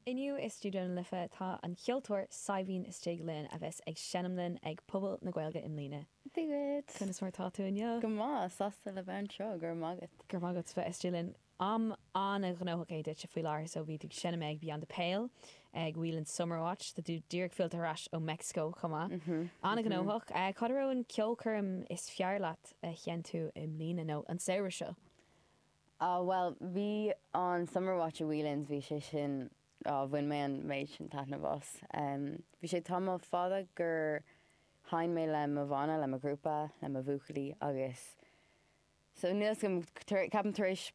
Inniu i Stiúideó na Life tá an ceoltóir Saidhbhín istigh linn a bheas ag seinm linn ag Puball na Gaeilge i mbliana. Bigwit! Conas mar tá tú inniu? Go maith, sásta le bheith anseo, go raibh maith agat. Go raibh maith agat bheith istigh linn. Am an-ghnóthach é duitse faoi láthair so bhí tú ag seinm ag Beyond the Pale, ag Whelan's Summer Watch, tá tú díreach fillte ar ais ó Meicsiceo chomh maith. An-ghnóthach. Cad a raibh an ceolchoirm is fearr leat a sheinn tú i mbliana nó an samhradh seo? Á, bhuel, bhí an Summer Watch i Whelan's, bhí sé sin, á, bhain mé an méid sin taitneamh as. Bhí sé tamall fada ó sheinn mé le mo bhanna, le mo ghrúpa, le mo bhuachaillí agus so níl 's agam, ceapaim tar éis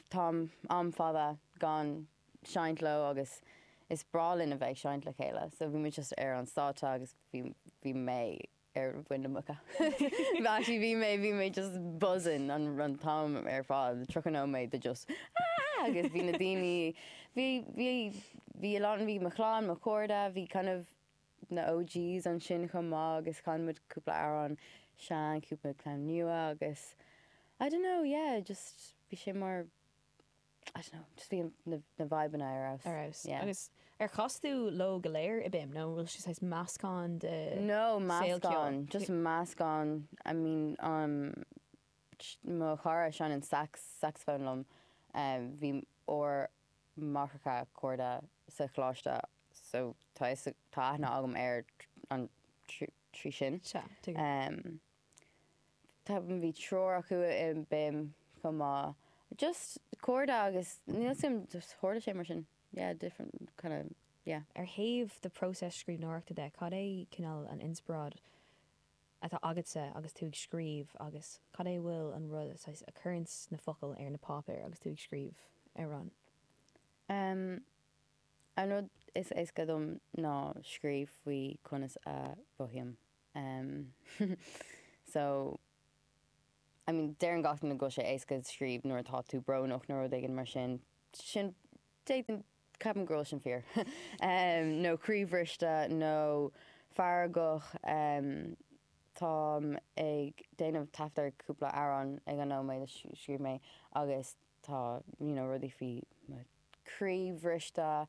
táim, am fada gan seinnt leo agus is breá linn a bheith ag seinnt le chéile so bhí muid just ar an stáitse agus bhí, bhí mé. ar bharr na gaoithe bhí mé, bhí mé just buzzing an an t-am ar fad, 30 nóiméad de just aah agus bhí na daoine, bhí, bhí, bhí a lán, bhí mo chlann, mo chairde, bhí kind of na OGs ansin chomh maith agus chan muid cúpla amhrán sean, cúpla ceann nua agus I don't know, yeah, just bhí sé mar, I don't know, just bhí na vibeanna ar fheabhas. Ar fheabhas. Yeah. Agus ar chas tú leo go léir i BIMM nó an bhfuil sé saghas meascán de saol ceoil? No, meascán. Just meascán. I mean, um, mo chara a sheinneann sax, saxophone liom. Bhí ár máithreacha cairde sa choláiste so tá fhios, tá aithne agam air an, trí sin. Sea, tuigim. bhí treoir acu i BIMM chomh maith. Just cairde agus níl 's agam just tharla sé mar sin. Yeah different kind of yeah. Ar thaobh do phróiseas scríbhneoireachta de, cad é cineál an inspioráid atá agatsa agus tú ag scríobh agus cad é a bhfuil an rud atá saghas ag cur na focail ar na páipéar agus tú ag scríobh ar an. Umm an rud is éasca dom ná scríobh faoi conas a mhothaím. em so I mean deireann gach duine go bhfuil sé éasca scríobh nuair atá tú brónach nó rud éigin mar sin sin d'fhéadfainn ceapaim go bhfuil sin fíor em nó croíbhriste nó feargach em táim ag déanamh taifead ar cúpla amhrán ag an nóiméad a scríobh mé agus tá you know rudaí faoi mo croíbhriste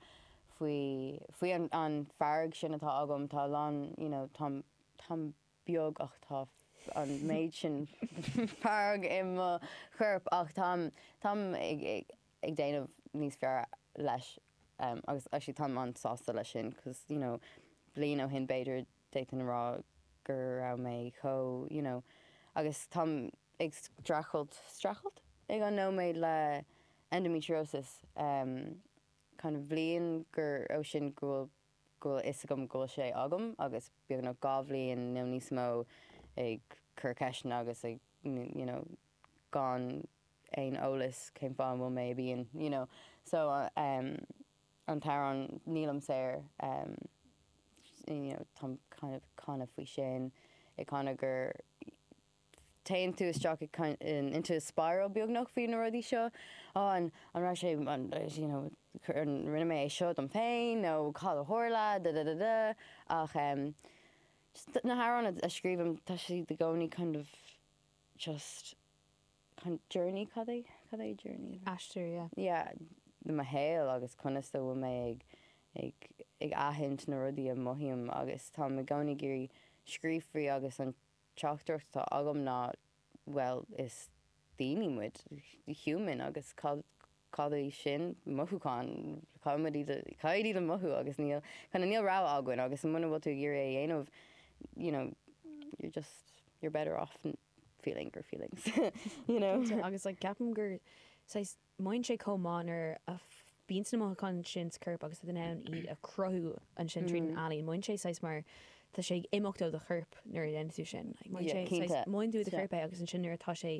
faoi, faoi an fearg sin atá agam. Tá a lán, you know, táim, táim beag ach tá an méid sin fearg i mo chorp ach táim, táim ag, ag déanamh níos fearr leis agus actually táim an-sásta leis sin cause, you know, bliain ó shin b'fhéidir d'fhéadfainn a rá go raibh mé chomh, you know, agus táim ag streachailt, streachailt ag an nóiméad le endometriosis, em, kind of bhliain gur, ó sin go bhfuil, go bhfuil a fhios agam go bhfuil sé agam agus beagnach dhá bhliain nó níos mó ag cur ceisteanna agus ag, you know, gan aon eolas cén fáth an bhfuil mé i bpian, you know. So, em. an t-amhrán nílim saor you know táim kind of ag canadh faoi sin ag canadh gur téann tú isteach kind of into a spiral beagnach faoi na rudaí seo á an an raibh sé an you know an ndearna mé é seo dom féin nó cad a tharla da da da da ach um, just na hamhráin a scríobhaim tá siad i gcónaí kind of just journey cad é? Cad é journey? Aistear, yeah. Yeah, le mo shaol agus conas a bhfuil mé ag, ag, ag aithint na rudaí a mothaím agus táim i gcónaí ag iarraidh scríobh faoi agus an teachtaireacht atá agam ná bhuel is daoine muid, human agus cad, cad é sin, mothúcháin, caithfimid iad a, caithfimid iad a mhothú agus níl, kind of níl rogha againn agus muna bhfuil tú ag iarraidh é a dhéanamh you know you're just, you're better off. feeling your feelings you know. Cinnte agus like ceapaim gur saghas mothaíonn sé chomh maith nuair a bhíonn na mothúcháin sin sa chorp agus tú in ann iad a chruthú ansin tríd an ealaín mothaíonn sé saghas mar tá sé ag imeacht ó do chorp nuair a dhéanann tú sin like mothaíonn sé saghas mothaíonn tú i do chorp é agus ansin nuair atá sé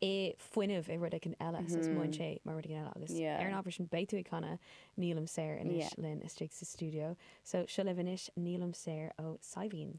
i fuinneamh i rud éigin eile saghas mothaíonn sé mar rud éigin eile agus ar an ábhar sin beidh tú ag canadh nílim saor anois linn istigh sa stiúideo so seo libh anois nílim saor ó Saidhbhín.